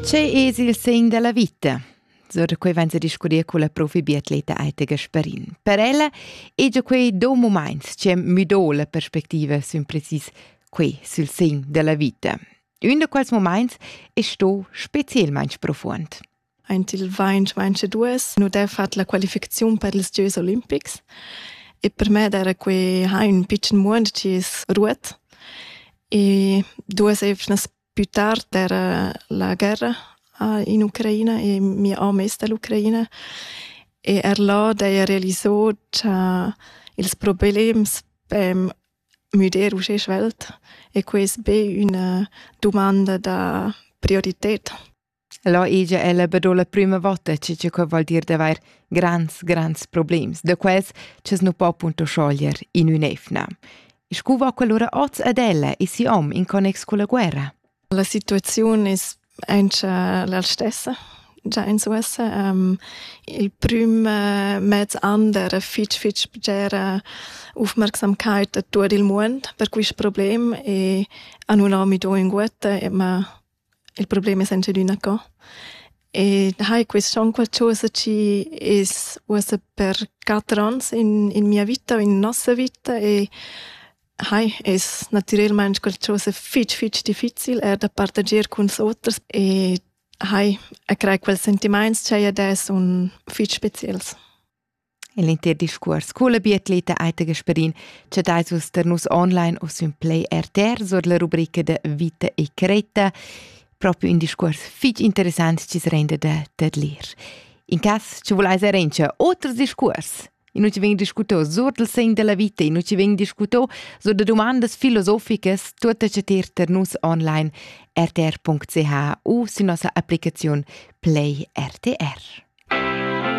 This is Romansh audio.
Che es il segn della vita? So da quei vain discutir con la profi biatleta Aita Gasparin. Per ella è già quei do moments che müdò la perspectiva sün precis quei sul segn della vita. Un da quels moments è sto specielmente profuond. Aint il vain vaince dues nu d'he fat la qualificaziun per ils Gieus Olimpics e per me era quei ha un pitschen muond chi es ruot e duas evnas Più tard era la guerra in Ucraina e mia amo es da l'Ucraina e er là d'haja realisò cha ils problems pem müder uschè svelt e quai es be üna dumanda da priorited. Là igia ella be do la prüma vota che che quai voul dir d'avair grands, grands problems, da quels ch'es nu po appunto scioglier in ün'eivna. Scu va quellura oz ad ella e si hom in connex culla guerra? La situaziun es aint la stessa già in Suessa. Um, il prüm uh, mez an era fitg, fitg bgera aufmerksamkeit a tot il mund per quist problem e a nun ho mi do in guetta, ma Il problem es anche adüna co. E hai quist on qualchosa chi es uossa per quatter ans in, in mia vita o in nossa vita e hai es natürelmaing qualchosa fich fich difficil eir da partager cun oters e hai a crai quels sentimaints cha i ad es un fich speciels. In l'entir discuors culla biatleta Aita Gasparin chatais vus tar nus online u sün Play RTR sur la rubrica da Vita e Creta. Propi un discuors fich interessant chi se renda da tadlir. In cas ci vulais arrangiar oters discuors. I nu ci vegn discutò sur del segn della vita, i nu ci vegn discutò sur da dumandas filosoficas, tuotta chatir tar nus online rtr.ch u sü nossa applicaziun Play RTR.